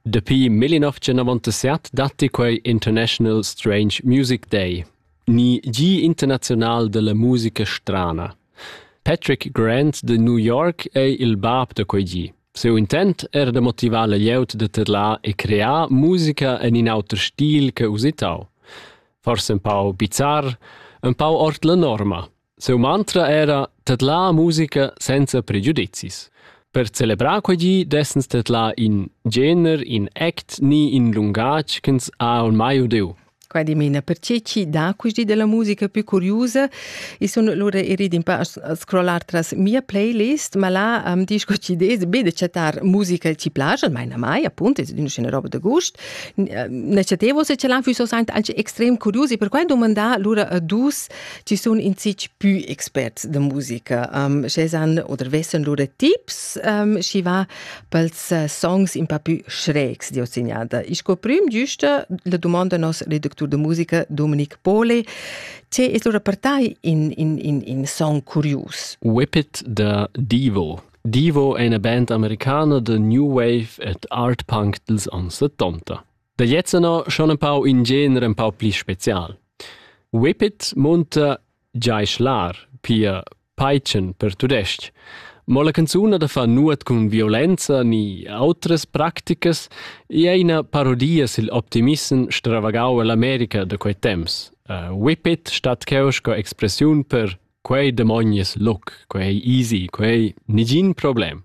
Dapi 1997 datti quei International Strange Music Day, ni Gi internazional della musica strana. Patrick Grant de New York ei il bab da quei gi. Seu intent era de motivar la glieud de tedlar e crear musica en in auter stil che usitau. Forse un pau bizar, un pau ord la norma, Siu mantra era tedlar musica senza pregiudizis. Per celebrar quei gi dessens tedlar in gener, in act ni in lungatg ch'ins ha ormai udiu. Qua dimena per chi chi dà questi della musica più curiosa e sono lura erid un pa a scrollar tras mia playlist, ma là am disch co ci des be de chattar musica ci place, almeno mai, appunto, è una roba de gust. Ne chatevo se ce l'han füsso saint alce extrem curiosi, per quai domandà lura a dus Ti sun in zic pü experts da musica. Um, schezan oder vessen lur tips, um, schi va pels uh, songs un pa pü schrägs di ossignada. Ich scoprim giusta la domanda nos redactur de musica Dominic Pole, ce es lura per tai in, in, in, in song curius? Whippet the Devo Devo è una band americana de new wave et art punk dels anni 70. Da gliez anno schon empau in gener empau pli special. Whippet munta giai schlar, pia peitschen per tudestg. Mo la canzun da fa nuot cun violenza ni outras practicas e ei ina parodia sil optimissem stravagau all'America da quei temps. Uh, whippet stat cheu sco expressiun per quei demonies look, quei easy, quei nigin problem.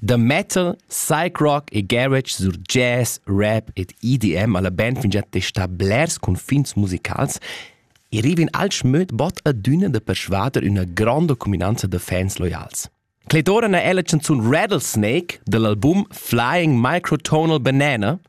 Da metal, psych-rock e garage sur jazz, rap ed EDM alla band fingià testà blers cunfins musicals e rivin alch möd bod adüna da persvader üna gronda cuminanza da fans loials. Clet'ora n'ha ella chanzun Rattlesnake dall'album Flying Microtonal Banana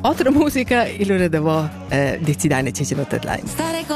Otra musica, il ora da vo, decidai ne ce ce not lain.